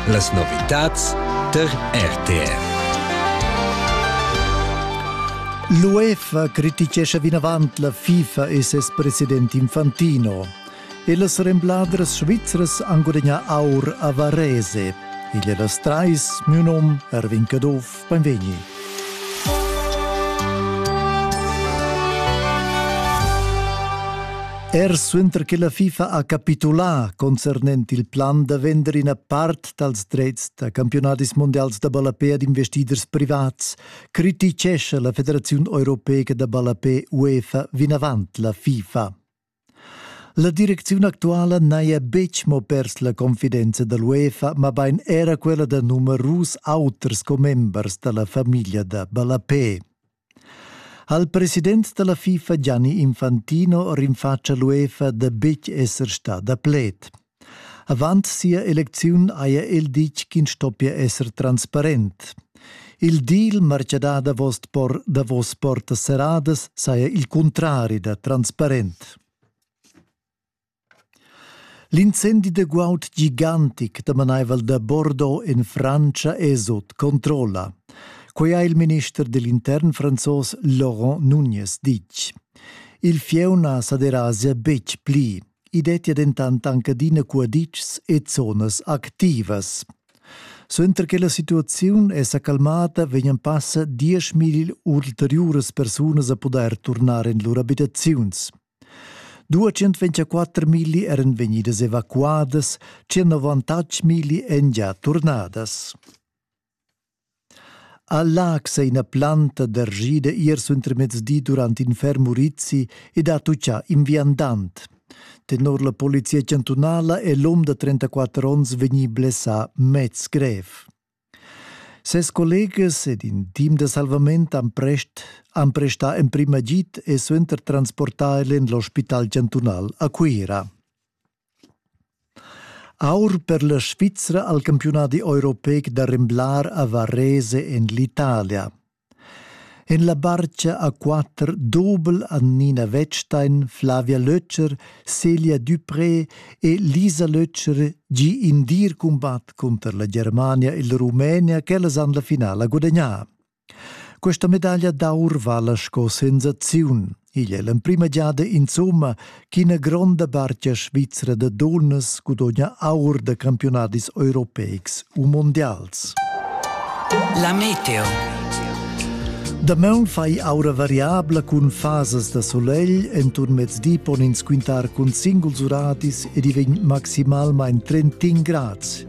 Las novitads tar RTR. L'UEFA criticescha vinavant la FIFA e ses president Infantino. E las rembladras svizras han gudagnà aur a Varese. Igl è las trais, miu num Erwin Caduff. Beinvegni. Er suenter che la FIFA ha capitulà concernent il plan da vender ina part dals dretgs da campionadis mondials da ballapé ad investiders privats, criticescha la Federaziun europeica da ballapé UEFA vinavant la FIFA. La direcziun actuala n'haja betg mo pers la confidenza da l'UEFA, mabain era quella da numerus auters commembers da la famiglia da ballapé. Ha il president da la FIFA Gianni Infantino rinfatg a l'UEFA da betg esser stà da pled. Avant sia elecziun haja el ditg ch'ins stoppia esser transparent. Il deal martgà davos, por davos portas serradas saja il cuntrari da transparent. L'incendi da guaud gigantic damanaival da Bordeaux en Frantscha è sut controlla. Quai ha il minister dell intern franzos Laurent Nunez ditg. Il fieu na sa derasia betg pli. I dettia dentant anc adina cuaditschs e zonas activas. Suenter che la situaziun è sa calmada vegnan passa dieschmilli ulteriuras persunas a pudair turnar en lur abitaziuns. 204 milli eran vegnidas evacuadas, 198 milli èn gia turnadas. A Laax è ina planta dergida ier suentermezdi durant in ferm urizi ed ha tutgà in viandant. Tenor la polizia chantunala è l'um da 34 onns vegnì blessà mez grev. Ses collegas ed in team da salvament han, prest, han prestà emprim agid e suenter transportà el en l'ospital chantunal a Cuira. Aur per la Svizra al campiunadi europeic da remblar a Varese en l'Italia. En la barcha a quatter dobel han Nina Wettstein, Flavia Lötscher, Celia Dupré e Lisa Lötscher gi in dir cumbat cunter la Germania e la Rumenia ch'ellas han la finala gudagnà. Questa medaglia d'aur vala sco sensaziun. Igl è l'emprima giada insomma ch'ina gronda bartgia svizra da dunnas gudogna aur da campionadis europeics u mondials. La meteo. Damaun fai aura variabla cun fasas da solegl, enturn mezdi pon ins quintar cun singuls uradis ed i vegn maximalmain 31 grads.